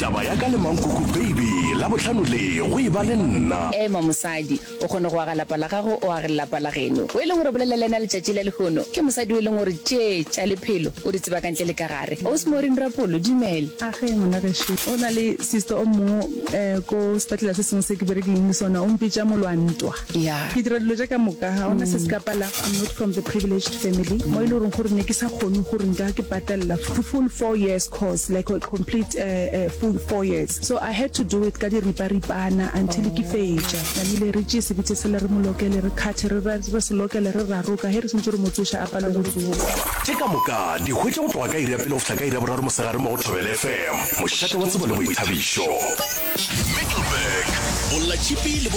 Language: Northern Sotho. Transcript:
Taba ya ka le mankoko baby labohlano le go e ba le nna. Ema mosadi, o kgone go aga lapa la gago, o age lelapa la geno. O e leng gore o bolela le yena letšatši la lehono, ke mosadi o e leng gore tše tša lephelo o di tseba ka ntle le ka gare. Ausi Maureen Rapolo, dumela. A ge ngwana gešo. Go na le sister o mongwe ko sepetlele se sengwe se ke berekileng le sona, o mpitša Molwantwa. ya ke dira dilo tša ka moka ga ona se se ka pala i'm not from the privileged family mo e le goreng gore ne ke sa kgone gore nka ke patalela the full four years course like a complete uh, uh, full four years so i had to do it ka diriparipana until ke fetša tlamile re tšee sebitse sele re molokele re kgathe re ra- re se lokele re raroka ge re sentse re motsoša a palo go tsoa tše ka moka di hwetše go tloga ka iri ya pele go fihla ka iri ya boraro mosegare mo go thobele fm mošate wa tsebo le boithabišo Middleburg, Bolla Chipi le